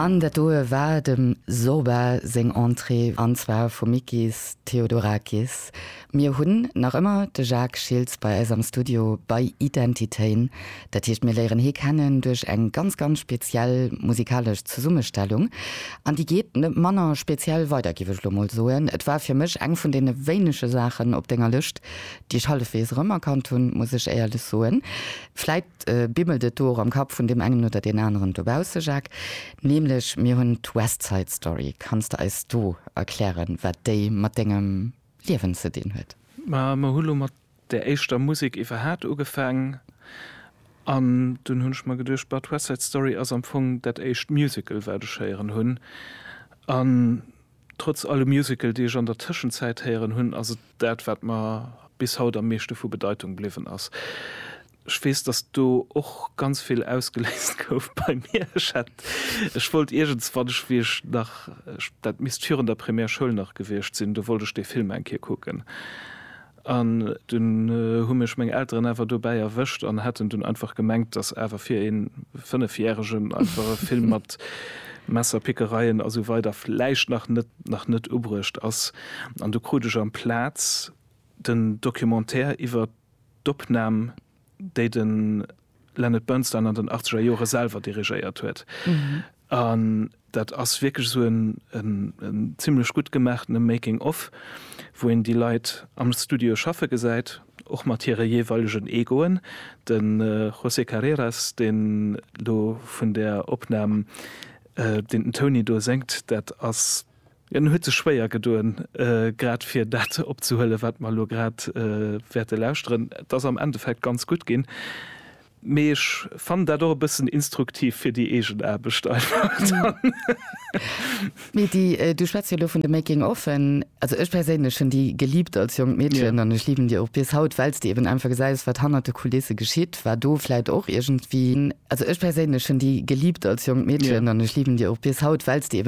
An dat doe war dem Zorba seng Entrée, an zwar vum Mikis Theodorakis. Mir hunn nach ëmmer de Jacques Schiltz bei eis am Studio bei Identitéin. Dat heescht, mir léieren hie kennen duerch eng ganz, ganz speziell musikalesch Zesummestellung. An déi geet net manner speziell weider, géif ech elo mol soen. Et war fir mech eng vun deene wéinege Saachen op denger Lëscht, déi ech hallefweegs erëmerkannt hunn, muss ech éierlech soen. Vläit Bimmelt et do och am Kapp vun deem engen oder deen aneren dobausse, Jacques? Nämlech mir hunn d'West Side Story. Kanns de eis do erklären, wat déi mat dengem Liewen ze dinn huet? Ma mer hu lo mat där éischter Musek iwwerhaat ugefaang an dunn hunn ech mer geduecht, bah, d'West Side Story ass am Fong dat éischt Musical, wat ech héieren hunn. An Trotz alle Musical déi ech an der Tëschenzäit héieren hunn, ass et dat wat mer bis haut am meeschte vu Bedeitung bliwwen ass. Ech weess dass do och ganz vill ausgeléist gouf bei mir. Ech hätt, ech wollt iergends wann ech, wéi ech nach, dat misst virun der Primärschoul nach gewiescht sinn, do wollt ech dee Film eng Kéier kucken. An dunn hu mech meng Elteren awer dobäi erwëscht an haten dunn einfach gemengt, dass awer fir ee Fënnefjäregen einfach e Film mat Messerpickereien a sou weider vläicht nach net nach net ubruecht ass. An du krut ech amplaz den Documentaire iwwert d'Opnam, déi den Leonard Bernstein an den achtzeger Jore selwer dirigéiert huet. An dat ass wierklech esou en zimlech gutt gemaachtene Making of, wou een déi Leit am Studio schaffe gesäit, och mat hire jeeweilegen Egoen. De José Carreras, deen do vun där Opnam, deen den Tony do séngt, dat ass. En huet sech schwéier gedoen, grad fir dat opzehuelen, wat mer elo grad wäerte lauschteren. Et ass am Endeffekt ganz gutt ginn, mee ech fannen dat och e bëssen instruktiv fir déi eegen Aarbecht einfach dann. D'Mady, du schwätz jo elo vun de Making offen. Also ech perséinlech hunn déi geliebt als jonkt Meedchen an ech liben déi och bis haut, well s de eben einfach gesäis, wat hannert de Kulisse geschitt. War do vläicht och iergendwéi, also ech perséinlech hunn déi geliebt als jonkt Meedchen an ech liben déi och bis haut, well s de eben.